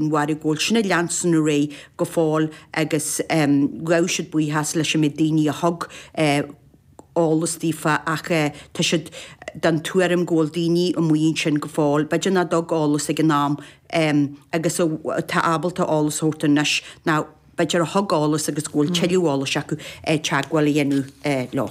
mharaigh go bhfuil sin ag leanstan ar aghaidh go fóill agus ghabh siad buíochas leis an méid daoine a thug eolas daofa ach tá siad den tuairim go bhfuil daoine amuigh ansin go fóill, b'fhéidir nach dtug eolas ag an am agus atá ábalta eolas a thabhairt anois nach. b'fhéidir, a thug eolas agus go bhfuil tuilleadh eolais acu, teagmháil a dhéanamh leo.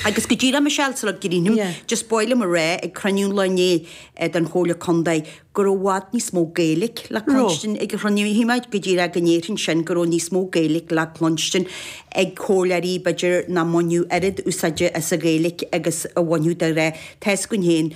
Agus go díreach, Michelle sula gcríochnaím, just b'fhearr liom a rá ag cruinniú an lae inné den Chomhairle Contae go raibh i bhfad níos mó Gaeilge le cluinstin ag an chruinniú, agus go díreach go ndéarfainn sin, go raibh níos mó Gaeilge le cluinstin ag comhairleoirí, b'fhéidir, nach mbaineadh oiread úsáide as an Ghaeilge agus a bhainfeadh dáiríre. Tá fhios againn féin.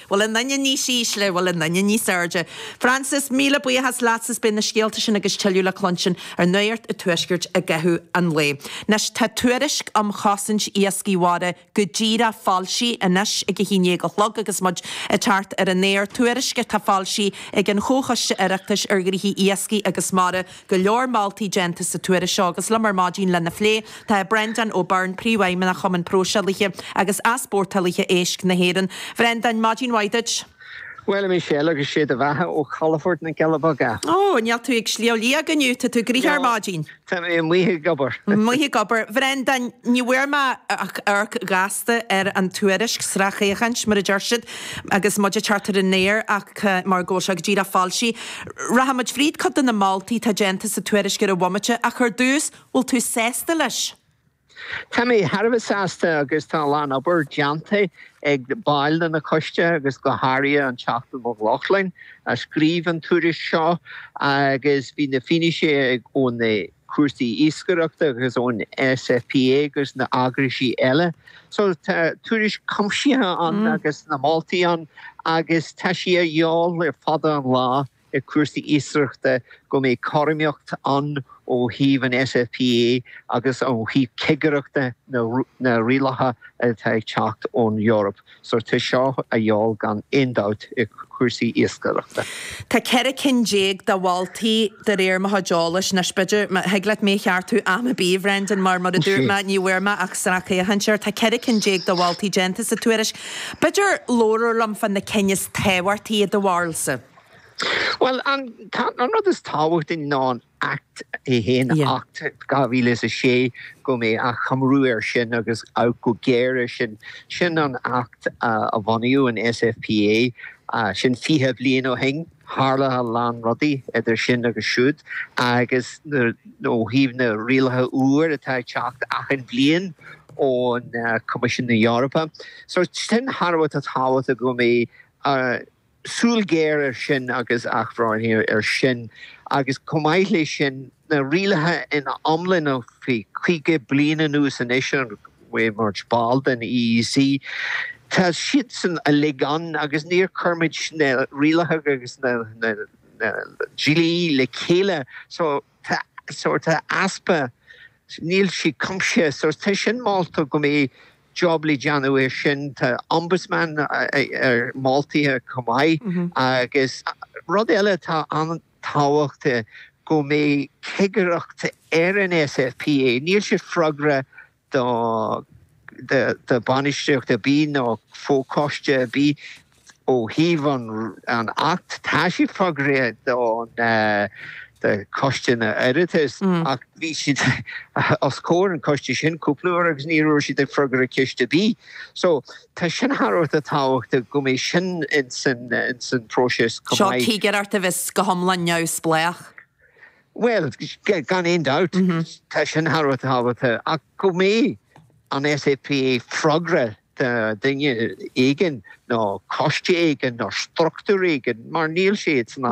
bhfuil an anailís níos ísle, an bhfuil an anailís níos airde. Frances, míle buíochas leat is beidh na scéalta sin agus tuilleadh le cluinstin ar Nuacht an Tuaiscirt i gcaitheamh an lae. Anois tá tuairisc um chosaint iascaigh mhara go díreach foilsithe anois ag a haon dhéag a chlog agus muid ag teacht ar an aer, tuairisc atá foilsithe ag an Chomhchoiste Oireachtais ar Ghnóthaí Iascaigh agus Mara. go leor moltaí déanta sa tuairisc seo agus liom ar maidin lena phlé tá Breandán Ó Beirn, Príomhfheidhmeannach Chumann Próiseálaithe agus Easpórtálaithe Éisc na hÉireann. Bhreandáin, maidin mhaith duit. Bhuel, a Michelle, agus sé do bheatha ó chalafort na gCealla Beaga. Ó, níl tú ag Sliabh Liag inniu, tá tú amuigh ar maidin. Tá mé amuigh ag obair. Amuigh ag obair. Bhreandáin, ní bhfuair mé ach amharc gasta ar an tuairisc, sracfhéachaint, mar a deir siad, agus muid ag teacht ar an aer ach mar go bhfuil sé go díreach foilsithe. Rachaimid fríd cuid de na moltaí atá déanta sa tuairisc ar an bhomaite ach ar dtús, bhfuil tú sásta leis? Tá mé thar a bheith sásta agus tá a lán obair déanta ag baill de na coiste agus go háirithe an Teachta Mac Lochlainn a scríobh an tuairisc seo agus bhí na finnéithe ó na cúrsaí iascaireachta agus ón SFPA agus na heagrais eile. So tá tuairisc cuimsithe ann agus na moltaí ann agus tá sé de dhíobháil le fada an lá i cúrsaí iascaireachta go mbeidh cothromaíocht ann ó thaobh an SFPA agus ó thaobh cigireachta na rialacha atá ag teacht ón Eoraip. tá seo de dhíobháil gan aon dabht i cúrsaí iascaireachta. Tá ceithre cinn déag de mholtaí, de réir mo chuid eolais. Anois, b'fhéidir, thig leat mé a cheartú am ar bith, a Bhrendan, mar, mar a dúirt mé, ní bhfuair mé ach sracfhéachaint air. Tá ceithre cinn déag de mholtaí déanta sa tuairisc. B'fhéidir labhair liom fá na cinn is tábhachtaí i do bharúilsa? Bhuel, an rud is tábhachtaí ná an. Acht a haon, Acht 2006, go mbeidh achoimriú air sin agus amharc go géar air sin. Sin an Acht a bhunaigh an SFPA, sin 20 bliain ó shin. Tharla a lán rudaí idir sin agus siúd agus ó thaobh na rialacha úir atá ag teacht achan bhliain ón Coimisiún na Eorpa. So sin thar a bheith tábhachtach go mbeidh, súil ghéar air sin agus athbhreithniú air sin agus chomh maith leis sin na rialacha ina iomláine faoi 50 bliain anuas anois ó bhí muid ball den EEC tá siadsan uilig ann agus níor chuir muid na rialacha agus na dlíthe le chéile so Tá sórt easpa, níl siad cuimsithe, so tá sin molta go mbeidh job le déanamh air sin, tá ombudsman á mholadh chomh maith agus rud eile atá an-tábhachtach go mbeidh cigireacht ar an SFPA, níl sé freagrach do bainistíocht ar bith nó fochoiste ar bith ó thaobh an Acht. Tá siad freagrach do choiste an Oireachtais ach bhí siad os comhair an choiste sin cúpla uair agus ní raibh siad ag freagra ceist ar bith. So tá sin thar a bheith tábhachtach go mbeidh sin ins an próiseas chomh maith. So cigireacht a bheas go hiomlán neamhspleách. Bhuel, gan aon dabht, tá sin thar a bheith tábhachtach, ach go mbeidh an SFPA freagrach do dhuine éigin nó coiste éigin nó struchtúr éigin, mar níl siad san am